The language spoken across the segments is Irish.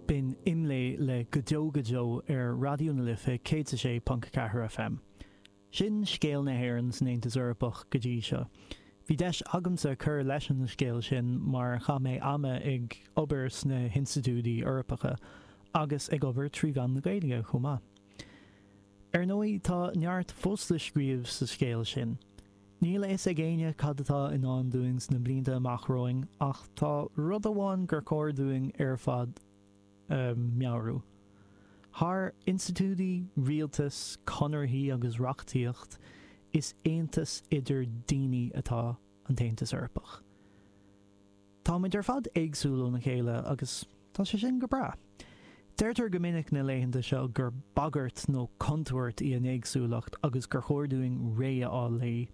B'in Imlé le Go Deo Go Deo ar Raidió na Life 106.4 FM. Sin scéal na hÉireann san Aontas Eorpach go dtí seo. Bhí deis agamsa cur leis an scéal sin mar chaith mé ama ag obair sna hinstitiúidí Eorpacha agus ag obair trí mheán na Gaeilge chomh maith. Ar ndóigh, tá neart fós le scríobh sa scéal sin. Níl a fhios ag éinne cad atá i ndán dúinn sna blianta amach romhainn ach tá rud amháin gur cóir dúinn ar fad a mheabhrú. Thar institiúidí, rialtas, conarthaí agus reachtaíocht, is aontas idir daoine atá an tAontas Eorpach. Táimid ar fad éagsúil óna chéile agus tá sé sin go breá. Deirtear go minic na laethanta seo gur bagairt nó contúirt í an éagsúlacht agus gur chóir dúinn réidh a fháil léi.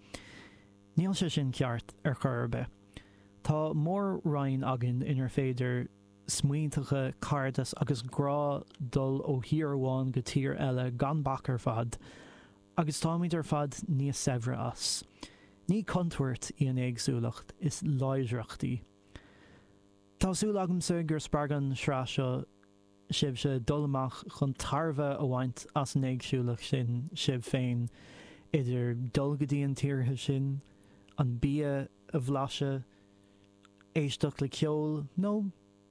Níl sé sin ceart ar chor ar bith. Tá mór-roinn againn inar féidir smaointeacha, cairdeas agus grá dul ó thír amháin go tír eile gan bac ar fad. Agus táimid ar fad níos saibhre as. Ní contúirt í an éagsúlacht, is láidreacht í. Tá súil agamsa gur spreag an sraith seo sibhse dul amach chun tairbhe a bhaint as an éagsúlacht sin sibh féin, idir dul go dtí an tíortha sin, an bia a bhlaiseadh, éisteacht le ceol nó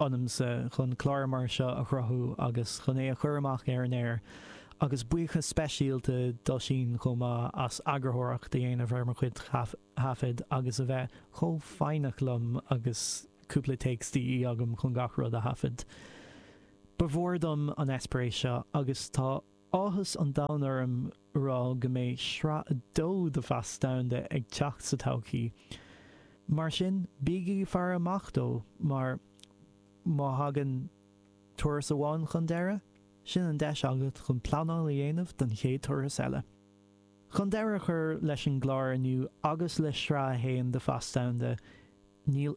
ionamsa chun clár mar seo a chruthú agus chun é a chur amach ar an aer, agus buíochas speisialta d'Oisín chomh maith as eagarthóireacht a dhéanamh ar mo chuid thaifead agus a bheith chomh foighneach liom agus cúpla takes de dhíth agam chun gach rud a thaifead. Ba mhór dom an eispéireas seo agus tá. Áthas an domhain orm a rá go mbeidh sraith a dó de Phas Domhanda ag teacht sa todhchaí. Mar sin, bígí ag faire amach dó mar má thagann turas amháin chun deiridh, sin an deis agat chun pleanáil a dhéanamh don chéad turas eile. Chun deireadh a chur leis an gclár inniu agus le sraith a haon de Phas Domhanda, níl